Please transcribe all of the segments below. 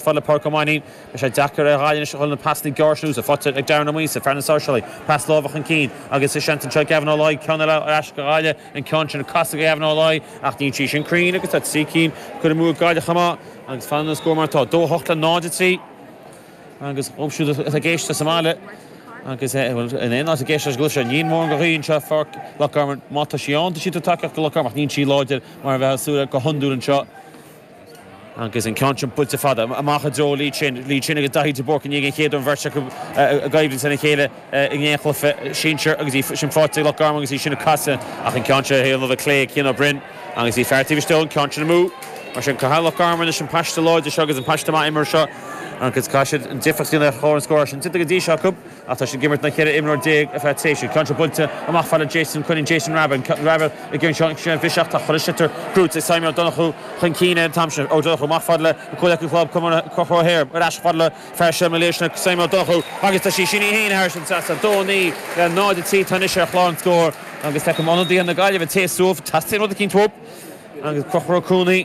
fad le Pádraic Ó Mainnín. Bhí sé deacair ar Ghaillimh anois a dhul na pasanna gearra siúd sa phote ag Darren Ó Muirgheasa, fear na Sáirséalach. Pas láimhe chun cinn agus seans anseo ag Gavin Ó Laoi. Ceann eile ar ais go Gaillimh. An ceann sin casta go Gavin Ó Laoi ach níl sí sin cruinn agus tá trí cinn curtha amú ag Gaillimh chomh maith agus fanann an scór mar atá, 2, 8 le 0, 3. Agus dhóibh siúd atá ag éisteacht sa mbaile agus nach bhfuil in aon áit ag éisteacht leis an gcluiche seo, níl mórán de ghaoth anseo i bPáirc Loch Garman. Má tá sí ann, tá sí ag tabhairt tacaíocht go Loch Garman ach níl sí láidir mar a bheadh súil go hiondúil anseo. Agus an ceann sin buailte fada amach i dtreo Lee Chin. Lee Chin agus Daithí de Búrca i ndiaidh an cheann úd, an bheirt acu i gcoimhlint lena chéile i ngach cluiche sinsir agus í sin faighte ag Loch Garman agus í sin ag casadh ach an ceann seo a thaobh na láimhe clé, Cian Ó Broin agus bhí fear taobh istigh dhó, an ceann sin amú. Mar sin caithfidh Loch Garman anois an paiste láidir seo agus an paiste maith imeartha seo agus caithfidh siad an difríocht a dhéanamh ar chlár an scóir, níl sin déanta go dtí seo acu. Ach tá siad ag imirt le 14 imreoir ar feadh tréimhse. Ceann seo buailte amach fad le Jason Coinín, Jason Rabbitte, Rabbitte i gcionn sa mheis seo ach tá an sliotar crochta, Simon Ó Donnchú chun cinn é an t-am sin. Ó Donnchú amach fad le a chomhleacaí club Conchubhar, ar ais fad le fear seo na Lárnach Simon Ó Donnchú agus tá sí sin í fhéin thar an trasnán. 2, 9 le 0, 3 tá anois ar chlár an scóir agus feicim ionadaithe na Gaillimhe ag téamh suas, teastaíonn rud eicínt uathub agus Conchubhar Ó Cuana.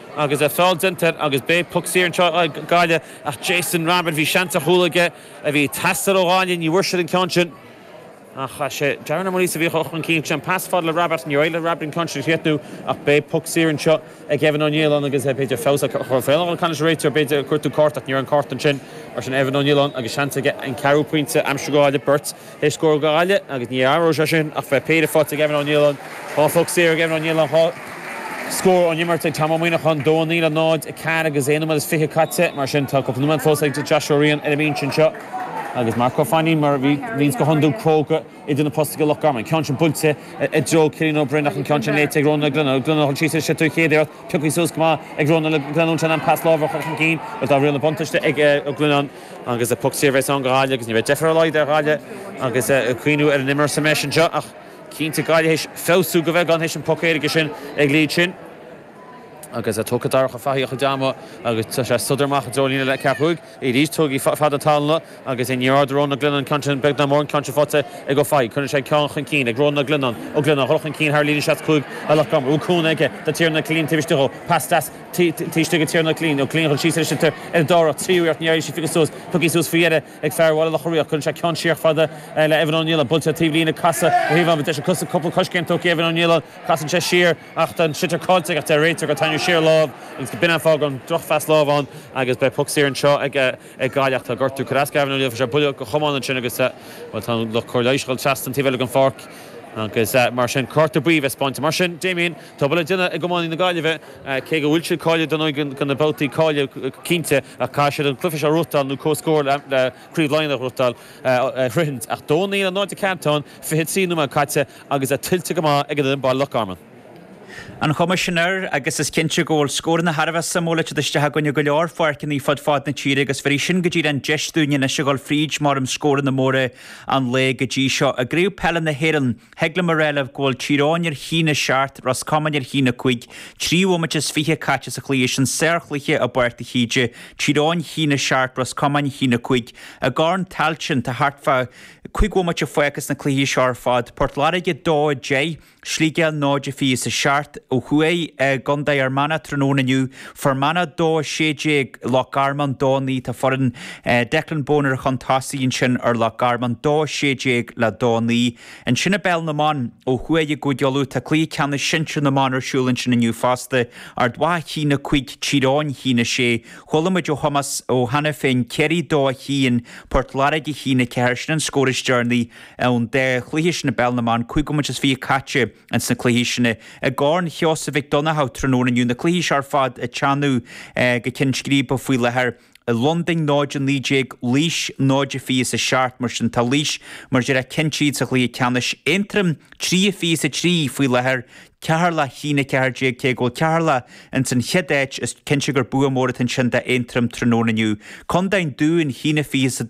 Agus feall déanta air agus beidh puc saor anseo ag Gaillimh ach Jason Rabbitte, bhí seans ar chúl aige a bhí ag teastáil ó Ghaillimh, ní bhfuair siad an ceann sin. Ach chaith sé, Darren Ó Muirgheasa a bhí chun cinn ansin, pas fad le Rabbitte, níor éirigh le Rabbitte an ceann sin a chríochnú ach beidh puc saor anseo ag Evan Ó Nialláin agus b'fhéidir feabhas a chur ar an caineadh réiteoir, b'fhéidir ag cuartú cárta ach ní raibh an cárta ansin. Mar sin Evan Ó Nialláin agus seans aige an ceathrú pointe a aimsiú do Ghaillimh, beirt. Scór go Gaillimh, agus ní athróidh sé sin, ach beidh péire faighte ag Evan Ó Nialláin. Dhá phoc saor ag Evan Ó Nialláin, dhá scór ón imirt ag Tom Ó Muíneacháin, dó a naoi le náid, a ceathair agus aon nóiméad is fiche caite. Mar sin, tá cúpla nóiméad fós ag Joshua Riain ar an mbinse anseo agus Mark Ó Fainnín, mar a bhíonns go hiondúil, cróga idir na postaí go Loch Garman. Ceann sin buailte i dtreo Cian Ó Broin ach an ceann sin léite ag Rónán Ó Glionnáin. Ó Glionnáin a thug suas ar an gcéad iarracht, piocthaí suas go maith ag Rónán Ó Glionnáin ansin, an pas láithreach chun cinn. Bhuel, dá mbeadh buntáiste ag Ó Glionnáin, Agus puc saor bheas ann go Gaillimh agus ní bheidh deifir ar a laghad ar Ghaillimh agus caoineadh ar an imreoir sa mheis anseo ach cinnte Gaillimh théis feabhsú go beagán théis an puc éirice sin ag Lee Chin agus tógfaidh Darach Ó Fathaigh a chuid ama agus tá sé ag sodar amach i dtreo líne ceathracha cúig arís tugaigí fad na tallanna agus níorbh fhearr do Rónán Ó Glionnáin an ceann sin beag ná mór an ceann sin faighte ag Ó Fathaigh cuireann sé an ceann chun cinn ag Rónán Ó Glionnáin Ó Glionnáin a dhul chun cinn thar líne seasca cúig, Conchubhar Ó Cuana aige do Tiarnán Ó Cillín taobh istigh dhó pas deas isteach ag Tiarnán Ó Cillín, nó cloígheann sí san istigh ar an dara, tríú iarracht ní éiríonn sí fós suas, tógthaí suas faoi dheireadh ag fear Bhaile Locha Riach. Cuireann sé ceann síos fad le Evan Ó Nialláin, buailte taobh líne, casadh ón taobh amuigh, deis ag cosc cúpla coiscéim tógthaí ag Evan Ó Nialláin, casann sé siar ach tá an sliotar caillte aige ach deir an réiteoir gur tarraingíodh siar lámh agus gurb in an fáth an drochphas láimh ann agus beidh puc saor anseo ag Gaillimh. Tá gortú ar ascaill Evan Ó Nialláin freisin ar buille go crua ansin agus bhuel tá an lucht cóirithe anois ag dhul trasna go dtí an taobh eile den pháirc agus mar sin cárta buí le bheith spáinte. Mar sin Damien, tá obair le déanamh ag iománaí na Gaillimhe. cé go bhfuil siad cáilithe don fhoireann go na babhtaí cáilithe cinnte ach caithfidh siad an cluiche seo a bhuachtáil nó comhscór le Craobh Laighean a bhuachtáil a shroichint ach dó naoi le náid a ceathair atá ann, 23 nóiméad caite agus é tuillte go maith ag an fhoireann baile Loch Garman. An chuma sin air agus is cinnte go bhfuil scóranna thar a bheith suimiúil ag teacht isteach againn i go leor pháirceanna fud fad na tíre agus bhéarfaidh sin go díreach an deis dúinn anois a dhul fríd mhórán scóranna móra an lae go dtí seo i gCraobh Peile na hÉireann Thig liom a rá libh go bhfuil Tír Eoghain ar a haon a seacht, Ros Comáin ar a haon a cúig, trí bhomaite is fiche caite sa chluiche sin, sárchluiche i bPáirc de hÍde, Tír Eoghain a haon a seacht, Ros Comáin a haon a cúig. I gCorn Tailteann tá thart fá cúig bhomaite fágtha sna cluichí seo ar fad, Port Láirge 2, 10, Sligeach 0, 27, ó thuaidh i gContae Fhear Manach tráthnóna inniu, Fear Manach, Dó 16, Loch Garman, Dó 9, Tá foireann Declan Bonner chun tosaigh ansin ar Loch Garman, Dó 16 le Dó 9. Ansin i bPeil na mBan, ó thuaidh i gCúige Uladh, tá Cluiche Ceannais Sinsir na mBan ar siúl ansin inniu fosta. Ard Mhacha a haon a 5 Tír Eoghain a haon a 6. Chuala muid ó Thomás Ó hAiniféin, Ciarraí 2 a haon, Port Láirge a haon a 4. Sin an scór is deireanaí ón dá chluiche sin i bPeil na mBan, cúig bhomaite is fiche caite. ins na cluichí sin i gCorn Sheosaimh Mhic Donnchadha tráthnóna inniu. Na cluichí seo ar fad ag teannadh go cionn scríbe faoi láthair. Londain 0-19 Laois 0-27 mar sin. Tá Laois mar dhreach cinnte sa chluiche ceannais. Aontroim 3-23 faoi láthair, Ceatharlach 1-14 Cé go bhfuil Ceatharlach ins an chéad áit is cinnte gur bua mór atá ansin d'Aontroim tráthnóna inniu. Condae an Dúin 1-22.